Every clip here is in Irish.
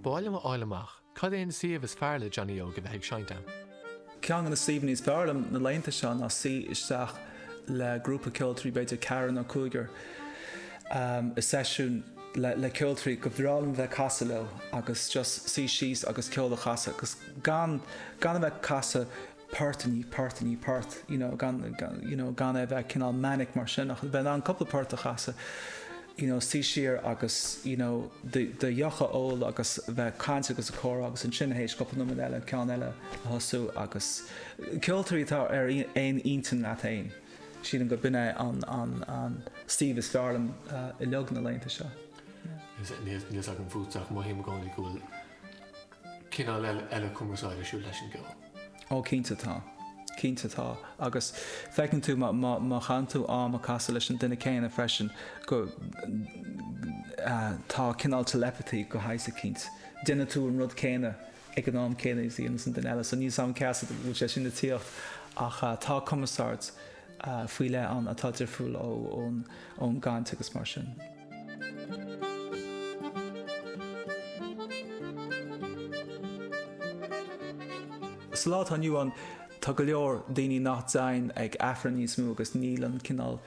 Ba mhaith liom a fháil amach cad é an suíomh is fearr le Johnny Óg a bheith ag seinnt ann. Ceann de na suíomhanna is fearr liom na laethanta seo ná suí isteach le grúpa ceoltóirí, b'fhéidir ceathrar nó cúigear, i seisiún le ceoltóirí gur breá liom a bheith ag casadh leo agus just suí síos agus ceol a chasadh agus gan gan a bheith ag casadh port i ndiaidh port i ndiaidh port, you know, gan, you know, gan é a bheith cineál manic mar sin, ach bheith in ann cúpla port a chasadh, you know, suí siar agus, you know, do, do dheoch a ól agus bheith ag caint agus ag comhrá agus ansin théis cúpla nóiméad eile ceann eile a thosú agus ceoltóirí atá ar aon intinn leat fhéin. Sílim gurb in é an, an, an suíomh is fearr liom uilig na laethanta seo. Níl, níl 's agam fút ach mothaím i gcónaí go bhfuil cineál eile cumarsáide ar siúl leis an gceol. Ó cinnte tá. Cinnte tá. Agus feiceann tú má chaitheann tú am ag casadh leis an duine céanna freisin go tá cineál telepathy de shaghas eicínt. Déanann tú an rud céanna ag an am céanna is a dhéanas an duine eile. So níl 's agam cén chaoi a bhfuil sé sin ag tíocht ach tá cumarsáid faoi leith ann atá difriúil ón gcaint agus mar sin. Sa lá atá inniu ann, tá go leor daoine nach dtéann ag Aifreann níos mó agus níl an cineál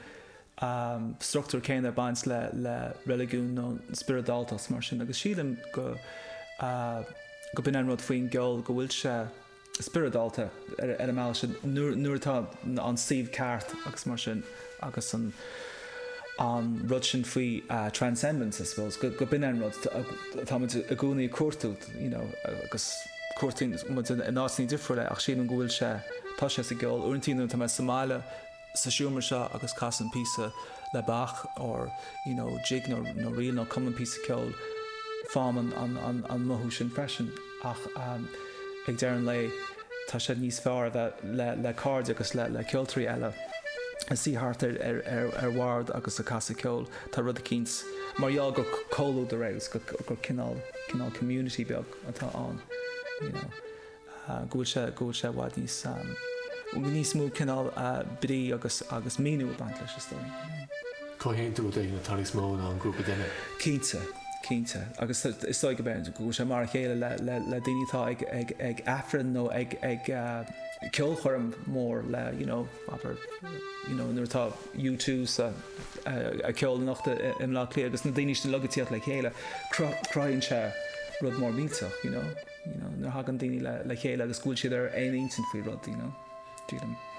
structúr céanna ag baint le reiligiún nó spioradáltacht mar sin agus sílim go go b'in an rud faoin gceol go bhfuil sé spioradálta ar an mbealach sin nuair atá an suíomh ceart agus mar sin agus an an rud sin faoi transcendence I suppose go b'in é an rud atá muid i gcónaí ag cuartú you know agus cuartaíonn muid in áiteanna difriúla é ach sílim go bhfuil sé tá sé sa gceol uaireantaí nuair atá mé sa mbaile sa seomra seo agus casaim píosa le Bach or you know jig nó nó ríl nó cumaim píosa ceoil faighim an an an an mothú sin freisin ach ehm ag deireadh an lae tá sé níos fearr a bheith le le cairde agus le le ceoltóirí eile ag suí thart ar ar ar ar bhord agus ag casadh ceoil tá rud eicínt mar gheall gur comhluadar é agus gur gur cineál cineál community beag atá ann you know. go bhfuil sé i bhfad níos. níos mó cineál brí agus agus míniú ag baint leis, is dóigh. Comhaontú a dtuigeann atá níos mó ná an grúpa duine. Cinnte. Cinnte. Agus is dóigh go mbeidh, go bhfuil sé mar a chéile le le le daoine atá ag ag ag Aifreann nó ag ag ceolchoirm mór le you know abair you know nuair atá U two ag ceol anocht i i mBleá Cliath agus na daoine sin ag tíocht le chéile, cruthaíonn sé rud mór millteach, you know. you know nuair a thagann daoine le chéile agus go bhfuil siad ar aon intinn faoi rud you know sílim.